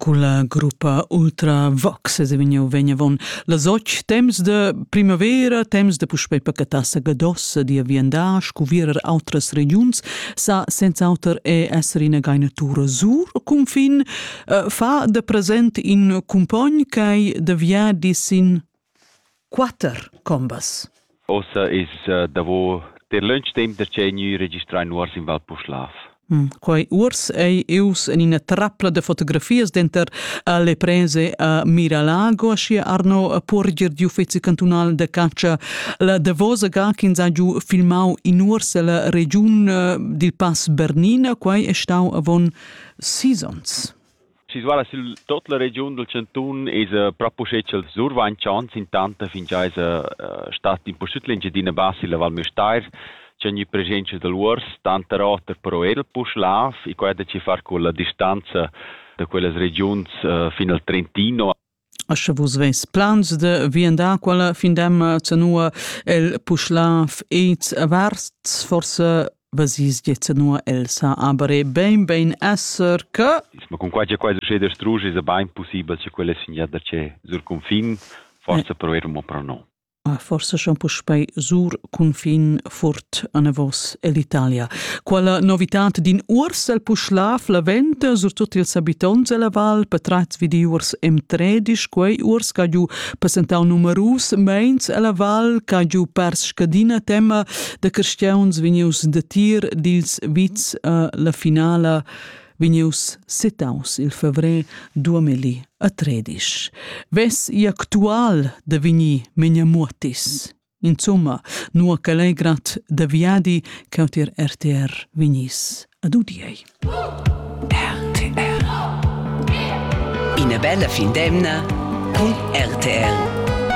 Culla gruppa Ultravox es vegniu vegn avon las och temps de primavera, temps de puspei pacatassa gadossa dia viandar, scuvierer outras regiuns, sa senz'auter e esser ina gainatura sur cunfin, eh, fa de present in cumpogn ch'ei de viadi sin Quatter combas. Ossa es davo ter lönch temp da tschè gnü registrà in uors in Val Puschlav. Mm, quei uors ei ius en ina trappla de fotografias denter alle prese a Miralago, aschia Arno Porger di Uffizi cantunal de caccia. La davosa ga ch'ins ha giu filmau in uors ella regiun dil Pass Bernina, quei è stau avon sis onns. Situada sül tuot la regiun dal chantun esa propcha uschè cha'l survainchants intant fingià esa stat impustüt l'Engiadina Bassa illa Val Müstair cha gnü preschientscha da l'uors, tanter oter però eir il Puschlav e quai da chi far culla distanza da quellas regiuns fin al Trentino. A sche vus veis plans da viandar quella fin d'emma zanua el Puschlav ed Varsts, forse vesis gie zanua Elsa, aber è bein bein esser che Ma cun quai che quai succede a Strusch è bain pussibel che quella sin da che sur cunfin forse prover mo pro no. Ah, forse schon puspei sur confin furt anavos ell'Italia. Quella novitat din urs el puschla flaventa sur tutti ils habitants della val, patratz vi di urs em tredisch, quei urs ca giu presentau numerus meins ella val, ca giu pers scadina tema de cristians vegnius de tir dils vits uh, la finala vegnius sitaus il fevrer 2013. Ves i actual da vegnir Menja Muotis. Insomma, nua che legrat da viadi che otir RTR vegnis ad udiei. RTR. Ina bella fin d'emna con RTR.